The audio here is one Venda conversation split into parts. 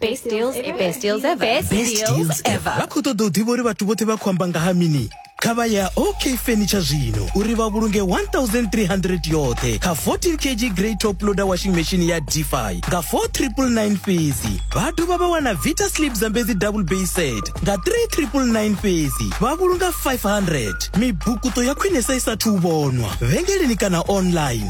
Best deals ever. Best deals ever. Best deals ever. vha khou ṱoḓa u ḓivha uri vhathu vhoṱhe vha khou amba nga ha mini kha vha ya ok furniture zwino uri vha vhulunge 1300 yoṱhe kha 14 kg grey top loader washing machine ya dfi nga 4999 fhedzi vha dovha vha wana vita slip zambedzi double bay set nga 3999 fhedzi vha vhulunga 500 mibukuto ya khwinesa i sathu u vhonwa vhengeleni kana online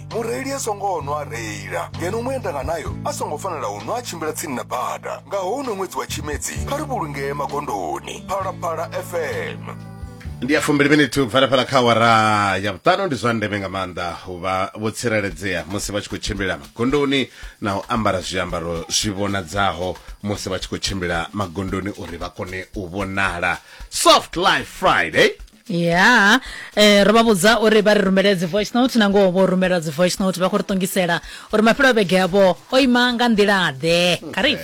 mureili a songo nwa a reila ngeno muendanga nayo a songo fanela u nwa a tshimbila tsini na bada nga houno ṅwedzi wa tshimedzi kha ri vhulungee magondoni phalaphala fm ndi ya fumbili minithu kubvela fhala kha awara ya vhuṱanu ndi zwa ndeme nga maanḓa u vha vho tsireledzea musi vha tshi khou tshimbila magondoni na u ambara zwiambaro zwi vhonadzaho musi vha tshi khou tshimbila magondoni uri vha kone u vhonala soft life friday ya eh, ro vha vhudza uri vha ri rumele dzi voice note na ngoho vho rumela dzi voice note vha khou ri ṱongisela uri mafhelo a vhege yavho o ima nga nḓila ḓe kha ri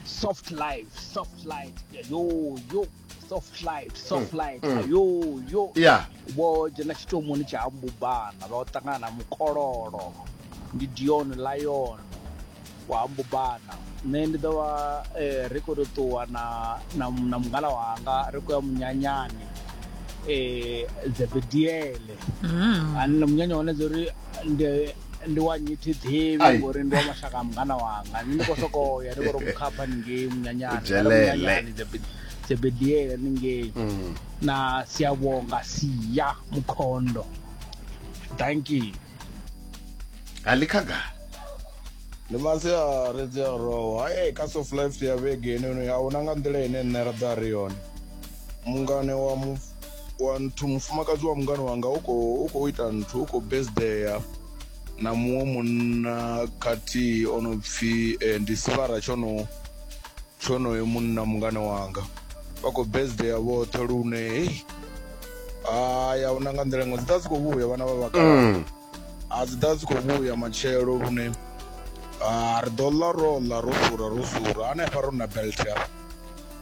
soft life soft life yo yo soft life soft life yo yo ya vho dzhena tshitomoni tsha mbubana vha ṱangana na mukololo ndi dion lion wa ha mbubana nṋe ndi ḓo vha eh, ri khou tou ṱuwa na na na mungala wanga ri khou ya munyanyani eh, dzebediele Mm. ani na munyanya wane dzi uri ndi ndi wa nyithi ḓivhi Ai. ngori ndi wa mashaka a mungana wanga nṋe ndi khou sokou ya ndi khou tou mukhapha ningei munyanyani U dzhelele. munyanyani Dzebe- dzebediele ningei Mm. na siyavhonga siya mukhondo danki alikhagala ndi masiari dzi a rowa e kha soft life ya vhege inoni a huna nga nḓila ine nṋe ra ḓo a ri yone mungane wa mu wa nthu mufumakadzi wa mungane wanga u khou u khou ita nthu u khou besdeya na muṅwe munna khathihi o no pfhi eh, ndi sivara tsho no tshonoyo munna mungane wanga vha khou besdeya vhoṱhe lune hei hai a huna nga nḓila iṅwe dzi ḓa dzi khou vhuya vhana vha vhakalaha mm. a dzi ḓa dzi khou vhuya matshelo lune ri ḓo ḽa ro ḽa ro sura ro sura hanefha ro na belt hafha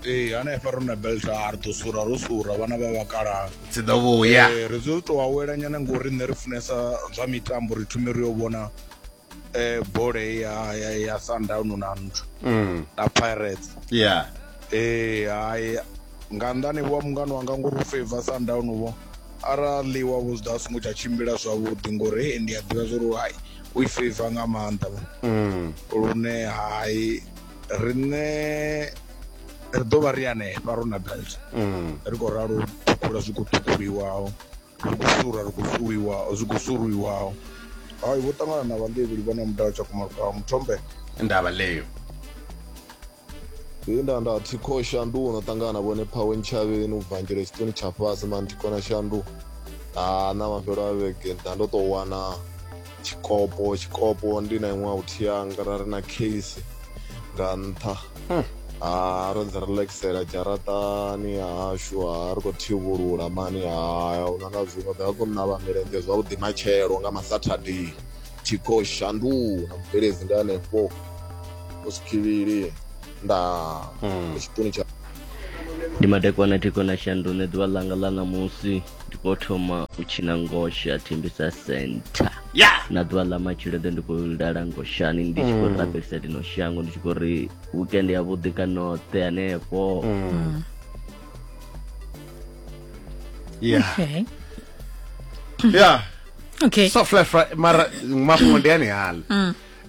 ee hanefha ro na belt a ri ḓo sura ro sura vhana vha vhakalaha dzi ḓo vhuya ri dzo tou awela nyana ngori nṋe ri funesa zwa mitambo ri thume ri yo vhona eh bole ya ya, ya Sundown na nthu mm. na Pirates yeah eh hayi nga ndani wa mungano wanga ngori u favor Sundown vho arali wa vhuzda a songo tsha tshimbila zwavhuḓi ngori he ndi a ḓivha zwa uri hayi u i favor nga maanḓa vho mm. lune hayi riṋe ri ḓo vha ri hanefha ro na belt mm. ri khou ralo ṱhukhula zwi khou ṱhukhuliwaho ri khou sura ri khou suriwa zwi khou suriwaho hai vho ṱangana na vhandevheli vha na mudala tshakumarukaho muthombe ndavha leyo he nda nda thi kho shandu no ṱangana na vhone phawe ntshavheni u bvanjela tshiṱoni tsha fhasi mani thi kona shandu ha na mafhelo a vhege nda ndo tou wana tshikopo tshikopo ndi na iṅwe out yanga ra ri na case nga nṱha hmm. ha ro dzi relaxela dzharaṱani hashu ha ri khou thivhulula mani haya u nanga zwiṅwe ḓa kho navha milenzhe zwavhuḓi matshelo nga masaturday thikho shanduka na mubveledzi ndi hanefho u sikhivhili nda hmm. tshipuni tsha ndi madekwana thikho na shandu nṋe ḓuvha ḽanga ḽa ṋamusi ndi khou thoma u tshina ngoshe a thembisa center ya na ḓuvha ḽa matshilo ḓe ndi khou lala ngoshani ndi tshi khou rabelisa lino shango ndi tshi khou ri weekend ya vhuḓi kanoṱe hanefho ya Okay. ya okay so fla fla mara mafhungo ndi ane hala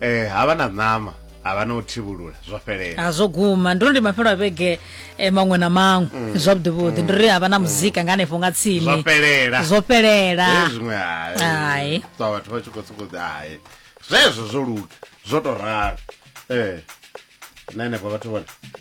eh havha na ṋama havha na u thivhulula zwo fhelela a zwo guma ndo ndi mafhelo a vhege eh, maṅwe na maṅwe mm. zwavhuḓi vhuḓi ndo ri havha na muzika nga hanefho nga tsini zwo fhelela zwo fhelela eh, zwiṅwe hai ṱwa vhathu vha tshi khou sokou hai zwezwo zwo luga zwo tou ralo ee eh, na henefho vhathu vhone